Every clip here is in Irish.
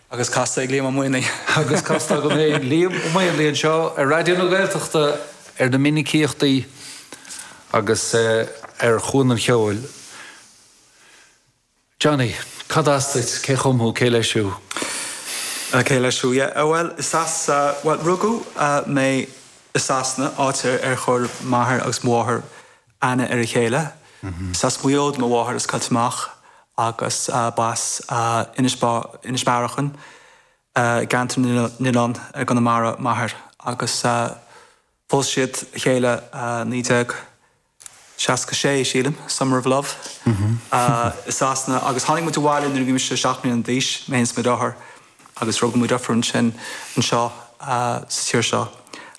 Agus casta ag Liam Ó Maonlaí. Agus casta agam féin, Liam Ó Maonlaí anseo ar Raidió na Gaeltachta ar na minicíochtaí agus ar Chuan an Cheoil. Johnny, cad as duit, cé chum thú, cé leis thú? Cé leis thú, yeah. Bhuel, is as, bhuel, rugadh mé i Sasana, áit ar chuir m'athair agus mo mháthair aithne ar a chéile. Is as Maigh Eo do mo mháthair as Coillte Mach agus b'as Inis Bearachain, i gCeantar na nOileán i gConamara, m'athair agus phós siad a chéile 1966, sílim, Summer of Love, i Sasana agus tháinig muid abhaile nuair a bhí mise seacht mbliana d'aois, mé féin is mo dheartháir agus rugadh mo dheirfiúr ansin anseo sa tír seo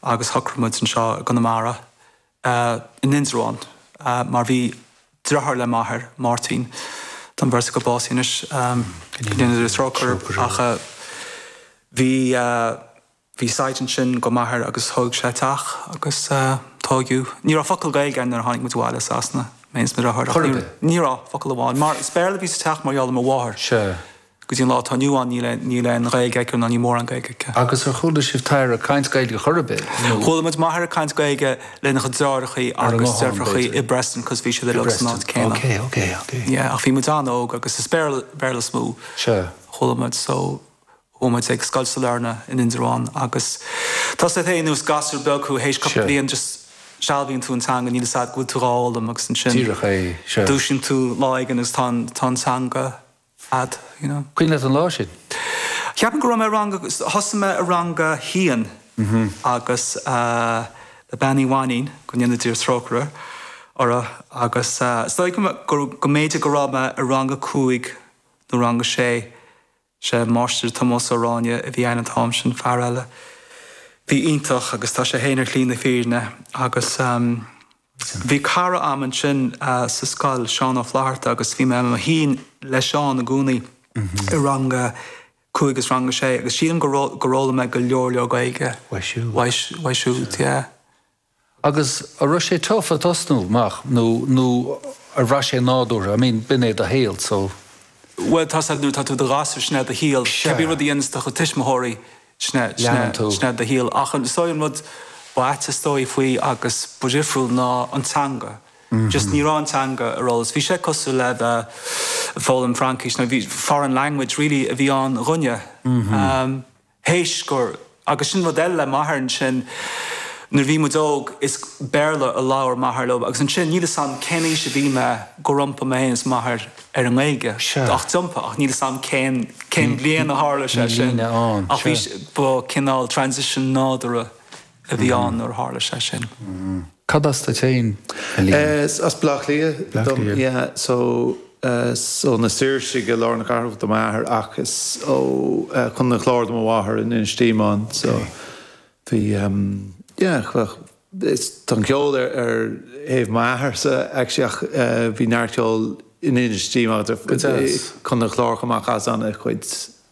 agus shocraigh muid anseo i gConamara a in Indreabhán mar bhí driotháir le m'athair, Máirtín, tá an bheirt acu básaithe anois, go ndéana Dia trócaire orthu, ach bhí, bhí site ansin go m'athair agus thóg sé teach agus tóigeadh, ní raibh focal Gaeilge a'inn nuair a tháinig muid abhaile as Sasana, mé féin is mo dhriotháir, ní raibh, focal amháin mar is Béarla a bhí sa teach mar gheall ar mo mháthair. Go dtí an lá atá inniu ann níl aon Ghaeilge aici ná níl mórán Gaeilge aici. Agus ar chuala sibh t'athair ag caint Gaeilge chor ar bith nó? Chuala muid m'athair ag caint Gaeilge lena chuid deartháireachaí agus deirfiúrachaí i bPreston cos bhí siad uilig san áit céanna. Yeah ach bhí muid an-óg agus is Béarla, Béarla is mó a chuala muid so chuaigh muid ag Scoil Sailearna in Indreabhán agus tá 'fhios a'd féin nuair is gasúr beag thú théis cúpla bliain just sealbhaíonn tú an teanga níl 'fhios a'd go bhfuil tú dhá fhoghlaim agus ansin dúisíonn tú lá éigin agus tá an teanga a'd, you know. Cuimhin leat an lá sin? Ceapaim go raibh mé i rang a, thosaigh mé i rang a haon agus le Bean Uí Mhainnín, go ndéana Dia trócaire uirthi, agus is dóigh go, go mb'fhéidir go raibh mé i rang a cúig nó rang a sé. Sé Máistir Tomás Ó Ráinne a bhí ann an t-am sin, fear eile a bhí iontach agus tá sé féin ar shlí na fírinne agus. Bhí cara a'm ansin sa scoil, Seán Ó Flatharta, agus bhí mé i mo shuí le Seán i gcónaí i rang a cúig is rang a sé agus sílim go raibh, gur fhoghlaim mé go leor, leor Gaeilge uaidh siúd, yeah. Agus a' raibh sé tough ag tosnú amach nó, nó ar bhraith sé nádúrtha, I mean b'in é do shaol so. Bhuel tá 'fhios a'd nuair atá tú i do ghasúr sin é do shaol, cébí rud a dhéanas do chuid tuismitheoirí, leanann tú. Sin é do shaol. Ach is dóigh an rud ba ait is dóigh faoi agus ba dhifriúil ná an teanga. Just ní raibh an teanga ar eolas. Bhí sé cosúil le bheith ag foghlaim Fraincis nó bhí foreign language really a bhí ann dhúinne. Théis gur, agus sin rud eile le m'athair ansin, nuair a bhí muid óg is Béarla a labhair m'athair liom agus ansin, níl 'fhios a'm cén aois a bhí mé gur iompaigh mé féin is m'athair, ar an nGaeilge ach d'iompaigh ach níl fhios agam cén cén bhliain a tharla sé sin ach bhí ba cineál transition nádúrtha a bhí ann nuair a tharla sé sin. Cad as duit féin, a Liam? As Baile Átha Cliath dom yeah so is ó na Saoirsí i lár na cathrach do m'athair ach is ó Chontae an Chláir do mo mháthair in Inis Díomáin so bhí yeah Is tá an ceol ar ar thaobh m'atharsa actually ach bhí neart ceol in Inis Díomáin Go deas. Contae an Chláir chomh maith chaitheas ana chuid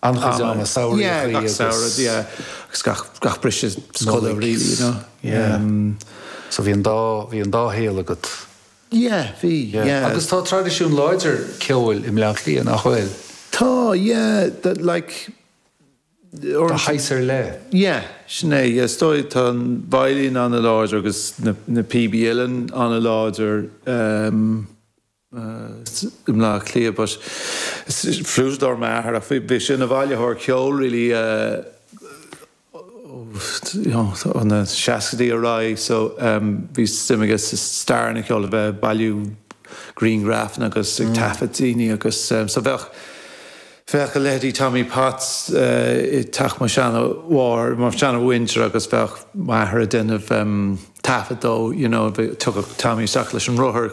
An-chuid ama samhraidh yeah acu gach samhradh agus. yeah agus gach gach briseadh scoile Nollaig really you know yeah em. So bhí an dá bhí an dá shaol agat. Yeah bhí yeah yeah. Agus tá traidisiún láidir ceoil i mBleá Cliath nach bhfuil? Tá yeah that like. de shaghas ar leith. Sin é, is dóigh. Tá an veidhlín an-láidir agus na píobaí uilleann an-láidir i mBleá Cliath but is fliúiteadóir m'athair ach bhí sé ina bhailitheoir ceoil really ó na seascaidí ar aghaidh so bhí suim aige sa stair an cheoil, a bheith ag bailiú grianghrafanna agus ag taifead daoine agus so bheadh. Bheadh a leithidí Tommy Potts i dteach mo sheana mháthar, mo sheana mhuintir agus bheadh m'athair ag déanamh taifead dó, you know, thiocfadh Tommy isteach leis an rothar,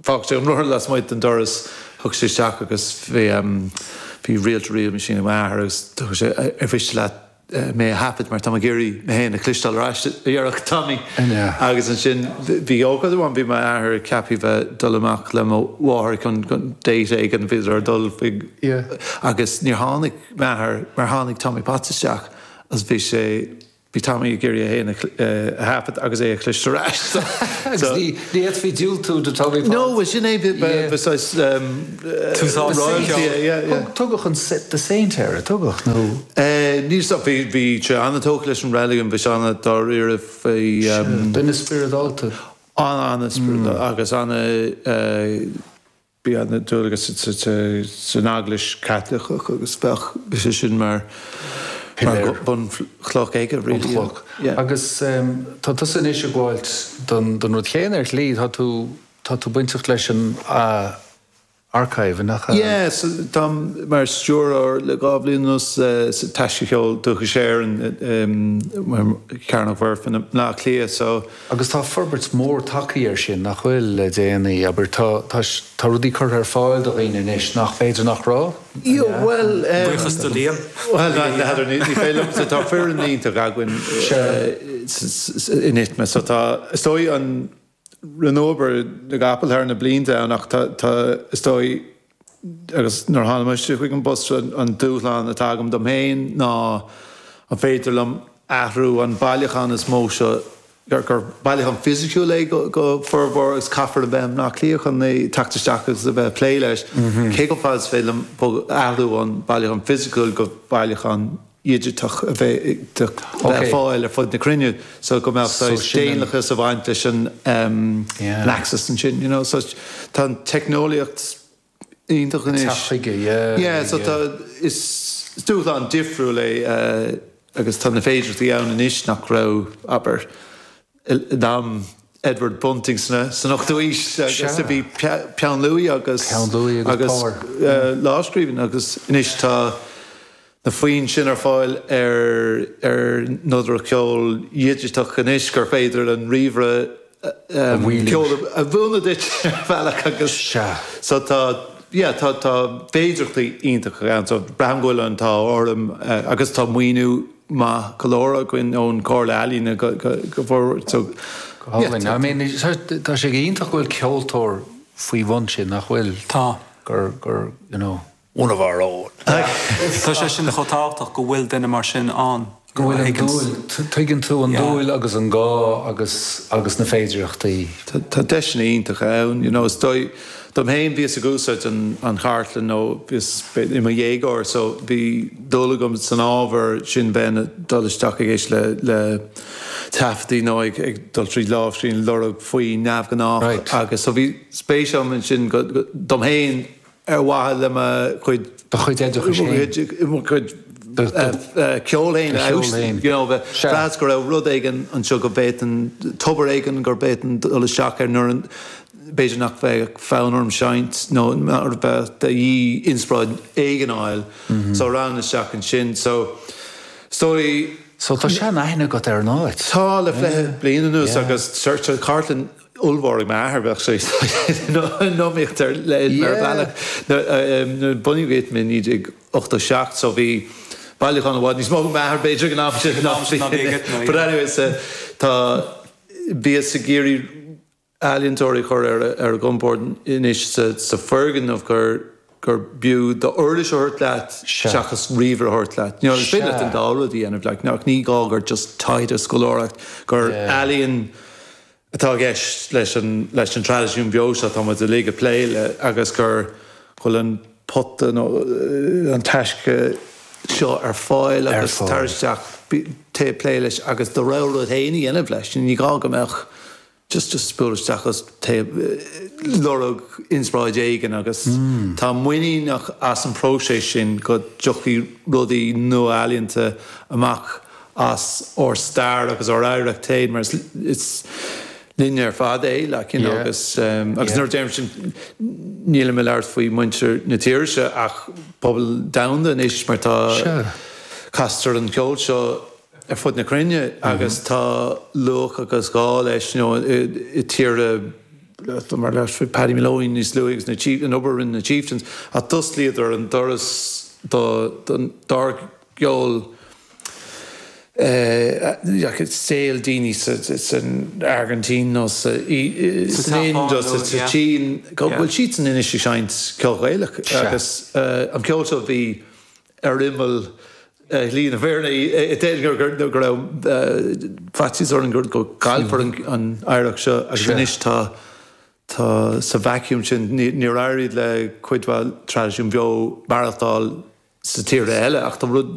fágfadh sé an rothar lasmuigh den doras, thiocfadh sé isteach agus bhí reel-to-reel machine ag m'athair agus thiocfadh sé ar mhiste leat, mé a thaifead mar táim ag iarraidh mé féin a chloisteáil ar ais, a dhéarfadh Tommy. Agus ansin bhí ócáid amháin, bhí m'athair ceaptha bheith dul amach le mo mháthair chun date éigin, bhíodar ag dul chuig agus níor tháinig m'athair mar tháinig Tommy Potts isteach agus bhí sé, bhí Tommy ag iarraidh é féin a thaifead agus é a chloisteáil ar ais. Agus ní fhéadfaí diúltú do Tommy Potts. No, bhuel sin é, bheadh saghas. Tús áite sa cheol. Tugadh an the Saint air, ar tugadh? Nó. Níl sa. Bhí sé an-tógtha leis an reiligiún bhí sé ana dáiríre faoi. Sea. Duine spioradálta. An-an-spioradálta agus ana bhí ana dualgas san Eaglais Chaitliceach agus bheadh sé sin mar bunchloch aige really. Bunchloch. Agus tá tusa anois ag gabháilt don rud chéanna ar shlí, tá tú. Tá tú bainteach leis an Archive, nach ea? Yeah, so táim mar stiúrthóir le dhá bhliain anuas sa Taisce Cheol Dúchais Éireann, Cearnóg Mhuirfean i mBleá Cliath, so. Agus tá forbairt mhór tagthaí air sin, nach bhfuil, le déanaí, abair, tá, tá, tá rudaí curtha ar fáil do dhaoine anois nach féidir nach raibh, an ea? Yeah, bhuel, eh. Buíochas do Liam. Bhuel, a Pheadair, ní féidir liom, so tá foireann iontach againn in ITMA, so tá, is dóigh an. Rinneadh obair na gcapall thar na blianta ann ach tá, is dóigh, agus nuair a tháinig mise chuig an bpost seo, an dúshlán atá agam dom féin ná an féidir liom athrú an bailiúchán is mó seo, gur bailiúchán fisiciúil é go formhór agus caithfear a bheith i mBleá Cliath chun teacht isteach agus a bheith ag plé leis, cé chomh fada is féidir liom athrú ón bhailiúchán fisiciúil go bailiúchán. dhigiteach a bheith ar fáil ar fud na cruinne so go mbeadh saghas daonlathas a bhaint leis an access ansin you know so tá an teicneolaíocht iontach anois. Teacht chuige yeah. Yeah so tá is dúshlán difriúil é agus tá na féidearthachtaí ann anois nach raibh abair in am Edward Bunting san ochtú aois agus a bhí peann luaidhe agus lámhscríbhinn agus anois tá na foinn sin ar fáil ar nodaireacht cheoil dhigiteach anois gur féidir leis an ríomhaire ceol a mhúineadh duit ar bhealach agus so tá yeah tá tá féidearthachtaí iontacha ann so braithim go bhfuil an t-ádh orm agus tá maoiniú maith go leor againn ón gComhairle Ealaíne go fóill. Álainn. I mean, tá sé go hiontach go bhfuil ceoltóir faoi bhun sin, nach bhfuil? Tá. Gur, gur, you know, one of our own. Tá sé sin chomh tábhachtach go bhfuil duine mar sin ann. Go bhfuil an dúil, tuigeann tú an dúil agus an gá agus, agus na féidireachtaí. Tá deiseanna iontacha ann, you know, is dóigh. Dom fhéin, bhíos ag úsáid an chartlainn ó bhíos i mo dhéagóir so bhí dúil agam san ábhar, sin bheinn ag dul isteach ag éisteacht le taifeadtaí nó ag dul tríd lámhscríbhinn ag lorg foinn neamhghnách agus so bhí spéis agam ansin dom fhéin ar mhaithe le mo chuid, do chuid oideachais fhéin, mo chuid ceoil fhéin a fheabhsú you know bhí sé deas go raibh rud éigin anseo go bhféadfainn, tobar éigin gur bhféadfainn dul isteach air nuair a B'fhéidir nach bheadh fonn orm seinnt nó nuair a bheadh de dhíth inspioráid éigin a fháil so rachainn isteach ansin. So, is dóigh. So, tá seanaithne agat ar an áit? Tá, le fiche bliain anuas agus tá cartlann ollmhór ag m'athair, bheadh sé in iomaíocht le ITMA ar bhealach. Nuair a bunaíodh ITMA i 1987, so bhí bailiúchán i bhfad níos mó ag m'athair b'fhéidir ag an am sin ná bhí ag ITMA. But anyway, so, tá, bhíothas ag iarraidh. ealaíontóirí a chur ar a gcompord anois sa foirgneamh gur b'fhiú d'uirlis a thabhairt leat seachas ríomhaire a thabhairt leat. Is féidir leat an dá rud a dhéanamh ach ní gá gur just taighde, scoláireacht, gur ealaín atá i gceist leis an traidisiún beo seo atá muid uilig ag plé le agus gur bhfuil an pota nó an taisce seo ar fáil agus tar isteach, téigh ag plé leis agus do rogha rud féin a dhéanamh leis. Ní gá go mbeadh. just just bualadh isteach agus tú ag lorg inspráid éigin agus táim muiníneach as an próiseas sin go dtiocfaidh rudaí nua ealaíonta amach as ár stair agus ár oidhreacht fhéin mar is is linne ar fad é like you know agus agus nuair a deirim sin nílim ag labhairt faoi muintir na tíre seo ach pobal domhanda anois mar tá castar an ceol seo ar fud na cruinne agus tá luach agus gá leis, you know, i tíortha mar labhrais faoi Paddy Moloney níos luaithe agus na Chiefs, an obair a rinne na Chieftains ach d'osclaíodar an doras do, don, dár gceol i, you know, saol daoine sa, san Airgintín nó sa, i, Sa san Ind Seapáin nó sa, sa yeah. tSín go Yeah. bhfuil siad sin anois ag seinnt ceol Gaelach Sea. agus eh, an ceol seo bhí ar imeall shlí na fírinne. Déarfá go raibh faitíos orainn go gcaillfear an oidhreacht seo agus anois tá sa vacuum sin. Níor éirigh le cuid mhaith traidisiúin bheo maireachtáil sna tíortha eile ach tá rud